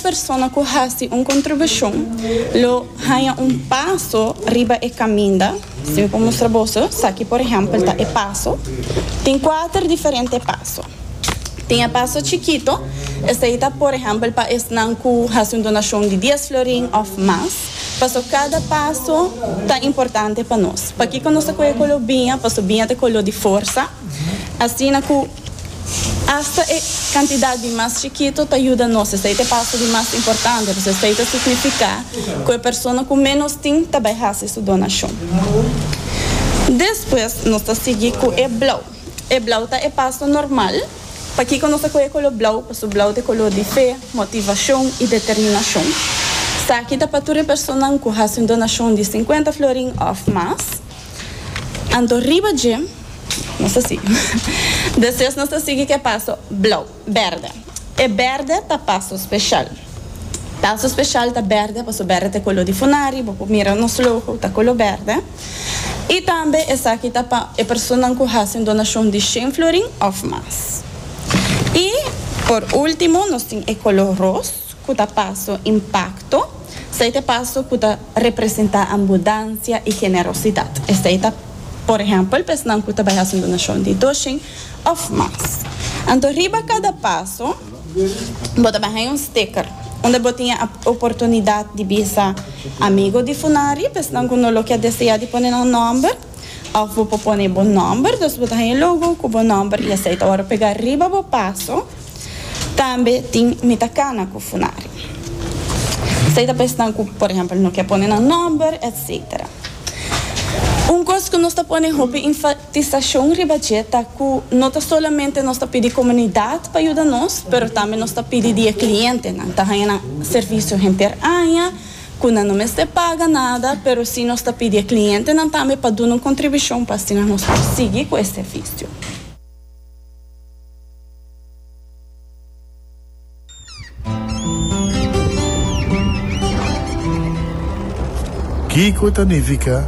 persona ku hasi un kontribushon lo haña un paso riba e kaminda. Si mi por mustra boso, esaki por ehèmpel ta e paso. Tin kuater diferente paso. Tin e paso chikito, esei ta por ehèmpel pa esnan ku hasi un donashon di dies florin òf mas. Paso kada paso ta importante pa nos. Pakiko nos ta kohe kolo biña? Paso biña ta kolo di forsa. Asina ku. Asta e kantidat di mas chikito ta yuda nos esei te paso di mas importante, pues esei ta signifiká ku e persona ku ménos tin ta bai hasi su donashon. Despues nos ta sigui ku e blau. E blau ta e paso normal. Pakiko nos ta kohe koló blau? Pasobra blau ta e koló di fe, motivashon i determinashon. Esaki ta pa tur e personanan ku hasi un donashon di sinkuenta florin òf mas. Anto riba dje nos ta sigui. Despues nos ta sigui cu e paso blauw, berde. E berde ta paso special. Paso special ta berde paso berde ta e color di funari, bo por mira nos logo ta color berde. Y tambe esaki ta pa e personanan cu haci un donacion di shen florin of mas. Y por ultimo nos tin e color roos. ku ta paso impakto, esei ta e paso ku ta representá ambudansia i generosidat. Esei ta, por ehèmpel, pesnan ku ta bai hasi un donashon di dos shin òf mas. Anto riba kada paso bo ta bai haña un sticker unda bo tin e oportunidat di bisa amigu di Funari, pesnan ku no lo ke deseá di pone nan nòmber. Òf bo por pone bo nòmber, dus bo ta haña e logo ku bo nòmber i esei ta wòrdu pegá riba bo paso. Tambe tin Mi ta kana ku Funari. Esei ta pesnan ku por ehèmpel no ke pone nan nòmber, etsetera. Un kos ku nos ta pone hopi enfatisashon riba dje ta ku no ta solamente nos ta pidi komunidat pa yuda nos, pero tambe nos ta pidi di e klientenan ta haña nan servisio henter aña, cu nan no mester paga nada, pero si nos ta pidi e clientenan tambe pa duna un contribucion pa asina nos por sigui cu e servicio. Kico ta nifica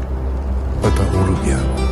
pa ta un rubian?